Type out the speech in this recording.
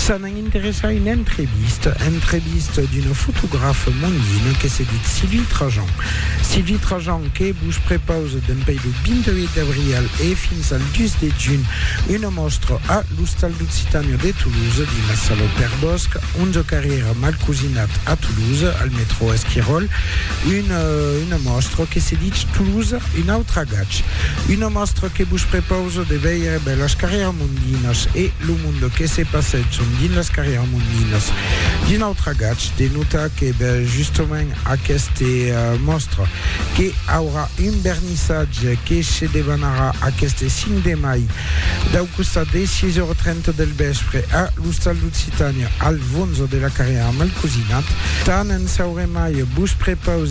Se n'an interessat una entrevista, entrevista d'una fotografa mondina que se ditz Sylvie Trajan. Sylvie Trajan que vos prepausa dempèi lo 28 d'abrial e fins al 2 de junh una mòstra a l'Ostal d'Occitània de Toulouse dins la sala Pèr Bosch, 11 carrièra Malcosinat a Toulouse, al metrò Esquiròl, una mòstra que se ditz Toulouse, un autre agach. Una mòstra que vos prepausa Cosa de veire bèlas carrièras mondinas e lo monde que se passètson dins las carrièras mondinas. D'un autre agach, de notar que bèl justament aqueste mòstre que aurà un vernissatge que se debanarà aqueste 5 de mai dau costat de 6,30 del vèspre a l'Ostal d'Occitània al Vonza de la Carrièra Malcosinat. Tant en saurem mai, vos prepausem!